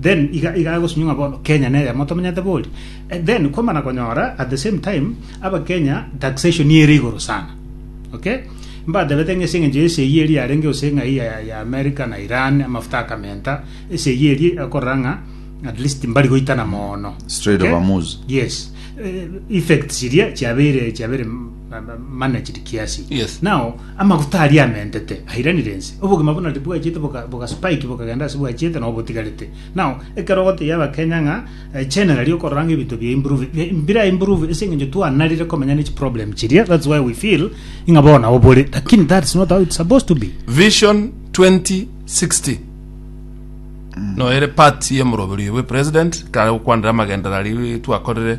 Then iga iga agosunywa ng'a bono Kenya neye amo tomenyete bori. Eh, Then kwamana konyora at the same time abakenya taxation ere igoro sana. Okay? Mbatebete ng'a ase eng'encho ya esegi eri yarenge gose ng'ai ya, ya America na Iran amafuta akamenta esegi eri ekorora ng'a at least mbari goitana moono. Strait of Okay? Hormuz. Yes. Eh, effects iria chiabeire chiabeire mana chiri kiasi Yes. nao amaguta aria amentete airanire ense obogima buna bwachete boka- bogaspike bokagenda ase bwachete nao botigarete nao ekero gotebia abakenya ng'a eh, generally okorora ng'a ebinto bia improve bi- bira improve ase eng'encho twanarire komenya ne chiproblem chiria that's why we feel ng'a bono nabo bore lakini that's not how it's supposed to be vision 2060 noere part ye moroberi we president kare gokwanera amagenderari twakorire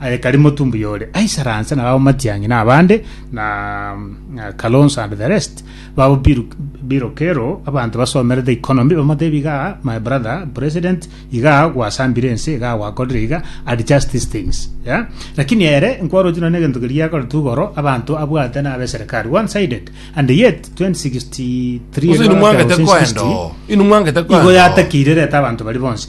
Aye kari motumbu yore aisaranse na babo Matiang'i na abande na na Kalonzo and the rest babo biru birokero abanto basomerete economy bamotebi iga my brother president iga gwasambire ense iga gwakorire iga and just these things yeah? lakini ere nkwarochi nonye egento keria akoretu igoro abanto abwate na abe serikali one sided and yet 2063 Ose inwe mwangete koenda oo. Inwe mwangete koenda igo oo. yatakire reta abanto bari bonsi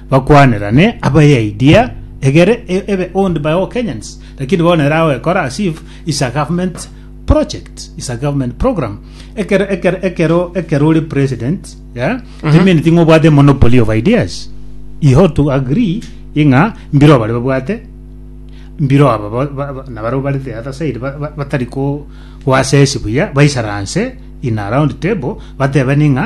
Bakwanerane abayaidea egere ebe owned by all Kenyans lakini bono ere agoekora as if is a government project is a government program ekero ekero ekero ekero ore president yeah timineti ng'a obwate monopoly of ideas you have to agree ing'a mbiro abare babwate mbiro aba ba- ba- ba- nabare bare the other side ba- ba- batari ko goassess buya baisaranse in a round table batebane ng'a